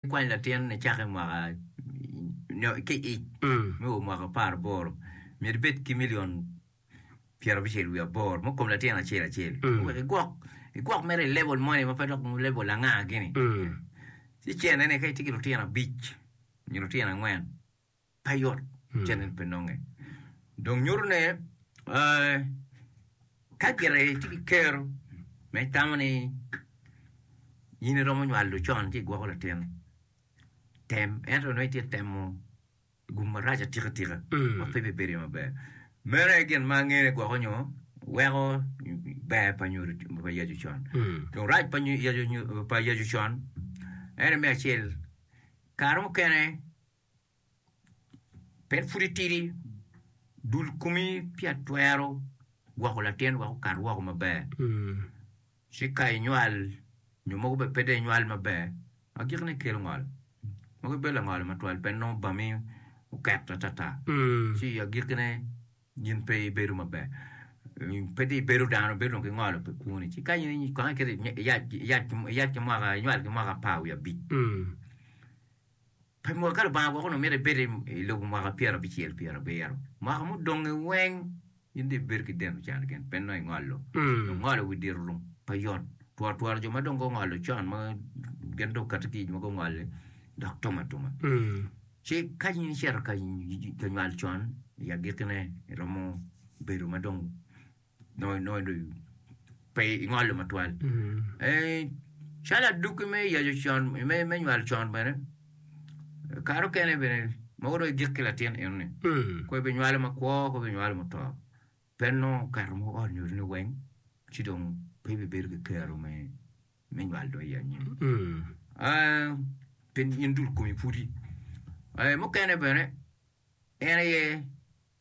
Kwany latin ni cako i mwaka nyo ki ic me o mwaka apar aboro myero ibed ki milion pyerabichel wiye aboro mo kom latin acel acel wek igwok igwok mere i level moni ma pe dok level anga gini ci cene ni ka itye ki lutino abic nyo lutino angwen pe yot cen en pe nonge dong nyuto ne ka gire ci ki kero me tamo ni in i romo nywalo con ci igwoko latin tem ento nongo itye temo gum marac atika tika ma pe bi bedo maber meno aye gin ma angene gwoko nyo weko ber pa nyodo pa yacu con dong rac pa yacu con en me acel kare mukene Pien pud itidi, dul komi pi atwero gwoko latin wek okat woko maber. Ci ka inywal nyo mogo bene pe dong inywal maber, ma gikone kelo ngol. Mogo ibedo langolo matwal pien nongo obami oket atata. Ci agikkine in pe ibedo maber, pe dong ibedo dano, ibedo dong ki ngolo pi kwoni. Ci ka in kong iketo iyac ki mwaka, inywal ki mwaka apar wiye abic. Pi mot ka Lubanga gwokoni omito ibed i lobo mwaka pyera abicel pyera abiro, mwaka mudonge weng in dong ibed ki deno can ken pe nongo ingolo. Dong ngolo wi diro rung pe yot. Tworo tworo jo ma dong gungolo con ma gin dong okato ki ic ma gungole dok tum atuma. Ci ka in icito ka nywal con i agikine iromo bedo ma dong nongo nongo dong pe ingolo matwal eh, calo aduki me yaco con me me nywalo con bene kare okene bene mogo dong igik ki latin eno ni Mm. kwe binywalo makwo kwe binywalo muto pe nongo okato mo ot nyo ni weng ci dong pe bibedo ki kero me me nywalo dong i anyim Mm. Ah, pien in dul kumi pudi Eh, mukene bene en aye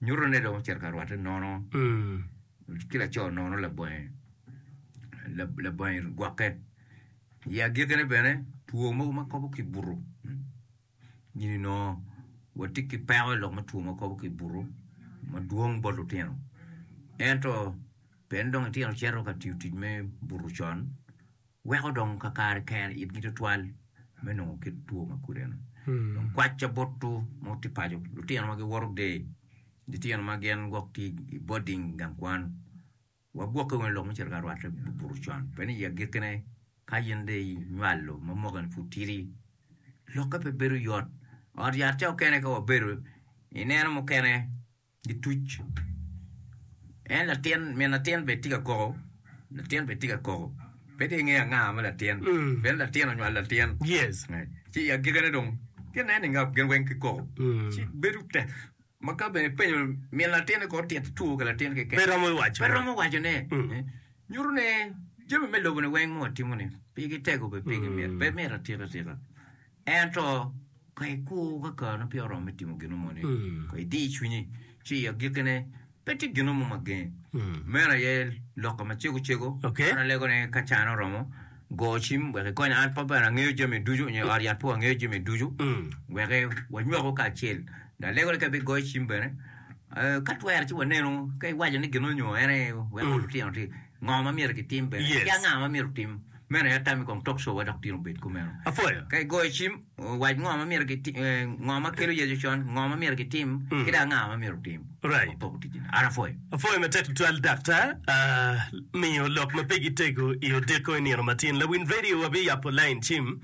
Nyuto ni dong ocito ka rwatte nono ki laco nono labonge labonge gwokke. I agikine bene, two mogo ma kobo ki buto nyo nongo watye ki peko i lok me two ma kobo ki buto madwong bot lutino. Ento pien dong itino cito ka tiyo tic me buto con, weko dong kakare kene itgi tutwal me nongo kit two ma kudeno. Dong kwacca botwu ma wutye paco, lutino ma giwoto der, litino ma gin gwok tye i boding gang kwan, wagwokke wunu i lok me cito ka rwatte buto con, pien i agikkine ka in dong inywalo ma mwakeni pud tidi, lokke pe bedo yot. Ot yat ca okene ka wabedo ineno mukene. Gituc. En latin, min latin bene tye ka koko, latin bene tye ka koko. Pe tye ingeyo anga ma latin, pien latin onywalo latin. Yes. Ci i agikene dong, gin nen inge gin weng gikoko. Ci bedo tek ma ka bene ipenyo min latin-ni kor tito two ki latin keken, Pe romo wacone. pe romo wacone. Nyuto ni jami me lobo-ni weng ma watimo-ni, pigi tego bene pigi myero, pe myero atika atika. Ento ka ikur ka kareni peya oromo me timo gino moni, ka idiyo cwinyi ci i agikkine pe tye gino mo ma gengi. Meno aye lokke macego cego. An alego ni ka cana oromo, go cim wek ikonya. An pe bene angeyo jami ducu nyo ot yat pe wangeyo jami ducu wek wanywakwu kacel. Dong alego ni ka ibigoyo cim bene, ka twere ci wanenu ka iwaco ni gin onyo en aye weko lutino-ni ngo ma myero gitim bene ki anga ma myero otim. Meno aye atam i kom tok cowa dok tino bed kumeno. Apwoyo ka igoyo cim, wac ngo ma myero gitim, ngo ma kelo Yecu con, ngo ma myero gitim, ki dong anga ma myero otim me poko ticci ni. An apwoyo. Apwoyo matek tutwal Dakta, miyo lok ma pe gitego i odeko i nino matyen. Lawiny radio wa biyabo lain cim.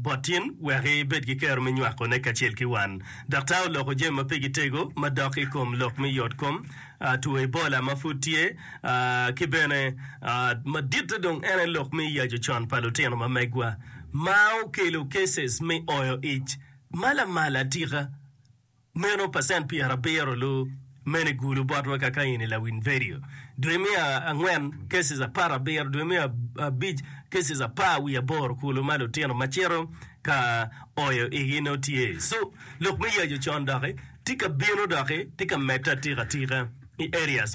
botin wek ibed ki kero me nywakone kacel ki wan. Daktar oloko jami ma pigi tego madok i kom lok me yotkom, two Ebola ma pud tye, ki bene maditte dong en aye lok me yaco con pa lutino ma megwa, ma okelo cases me oyo ic ma lamal atika. Meno pacent pyer abiro lu mene gulu bot wa kaka in i lawiny vedio. Dwe me angwen cases apar abiro, dwe me abic cases apar wiye aboro kulu ma lutino ma cito ka oyo igi nongo tye. So lok me yaco con doki tye ka bino doki tye ka medde atika tika i areas.